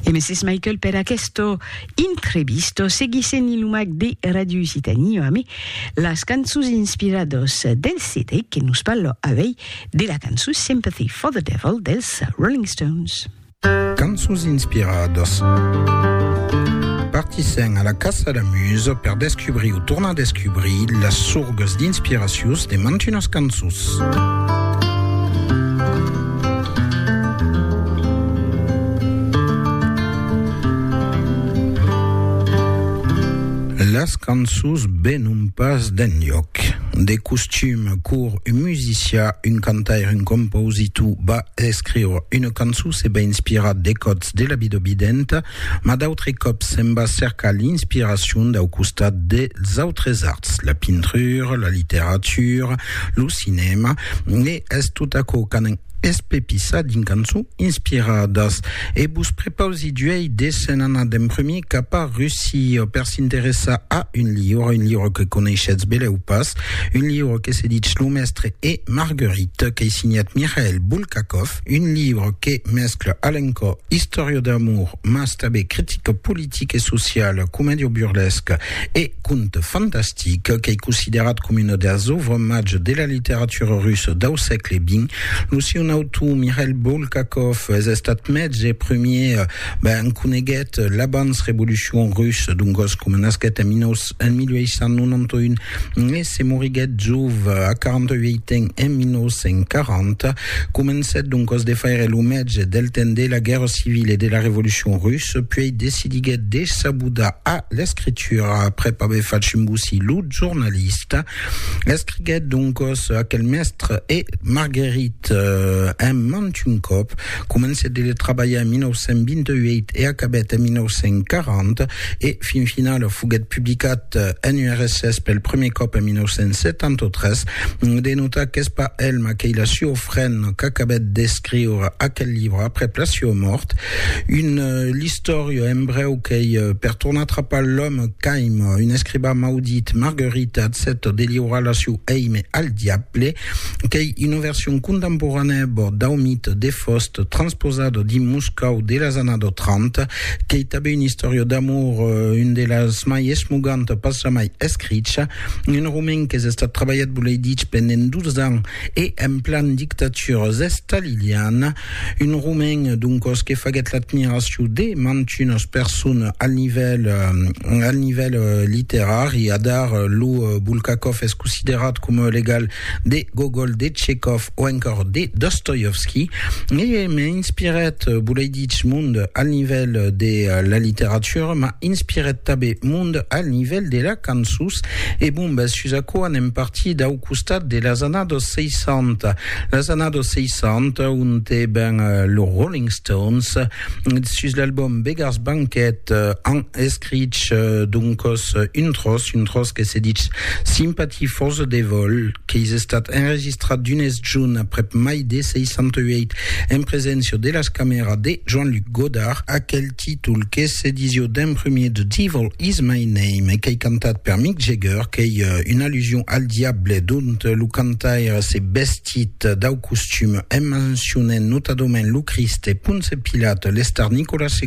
E Mrs. Michael per aquesto intrevisto seguissent i lumac de Radio Occitanie ame las cançons inspirados del CD que nos parlo avei de la cançon Sympathy for the Devil dels Rolling Stones. Cançons inspirados. Partissent a la caça la musa per descubrir o tornar descubrir las sorgas d'inspiracions de mantunas cançons. Las cançons venon pas d'enlhòc. De costum, quor un musicià, un cantaire, un compositor va escriure una cançon se va inspirar de còts de la vida videnta, Mas d'autres còps se'n va cercar l'inspiracion dau costat dels autres arts, la pintura, la literatura, lo cinèma, e es tot aquò qu'anam espepissar dins cançons inspiradas. E vos prepausi d'uèi de se'n anar d'emprumir cap a Russia per s'interessar a un liure, un liure que coneishetz belèu pas, un liure que se ditz Lo Mestre e Marguerite, qu'ei signat Mikhail Bulgakov. Un libre que mescla a l'encò istòria d'amor mas tanben critica politica e sociala, comèdia burlesca e conte fantastic. Qu'ei considerat coma una deas òuvres màger de la literatura russa dau sègle xx, lo siun autor, Mikhail Bulgakov, es estat mètge primièr, ben coneguèt l'abans-revolucion russa, dongos coma nasquèt en 1900. en 1891 e se moriguèt jove a 48 ans en 1940, comencèt doncas de faire lo mètge del temps de la guèrra civila e de la revolucion russa, puèi decidiguèt de s'abudar a l'escritura aprèp aver fach un bocí lo jornalista. Escriguèt doncas aquel mèstre e Marguerite en mantun còp. Comencèt de trabalhar en 1928 e acabèt en 1940, e fin finala foguèt publicat en URSS pel prumèr còp en 1973. De notar qu'es pas el Makheila Siofren qu'acabèt d'escriure aquel libre aprèp la siua mòrt. Un l'istòria en brèu qu'ei per tornar atrapar l'òme qu'aima un escribà maudit, Marguerite, accèpta de liurar la siu èime al diable. qu'ei una version contemporanèa bòrd dau mite de Faust transposada dins Moscòu de las annadas 30, qu'ei tanben una istòria d'amor, un de las mai esmoganta pas jamai escricha, un romen qu'es estat trabalhat, volei dich, pendent 12 ans e en plan dictatura estaliliana. Un romain, doncos, que faguèt l'admiracion de mantunas personas al nivèl, al nivèl literari. Adar, lo Bulgakov es considerat coma o l'egal de Gogol, de Tchekhov o encòr de Dostoievski. E m'inspirèt, volei dich, mond al nivèl de la literatura, m'a inspirèt tanben mond al nivèl de la cançons. E bon, bèth, sus aquò anem partir dau costat de las annadas 60, las annadas 60 ont e ben los Rolling Stones sus l'album Beggars Banquet an escrich doncos un tros, un tros que se ditz Sympathy for the Devil qu'es estat enregistrat d'unes junt aprèp mai de 68 en preséncia de las camèras de Jean-Luc Godard, aquel. títol que s'edició d'un premier The Devil Is My Name qu'ei cantat per Mick Jagger, qu'ei una allusion al diable dont lo cantaire s'es vestit dau costum en mencionent notadament lo Crist e Ponce Pilat, l'Estar Nicolas ii.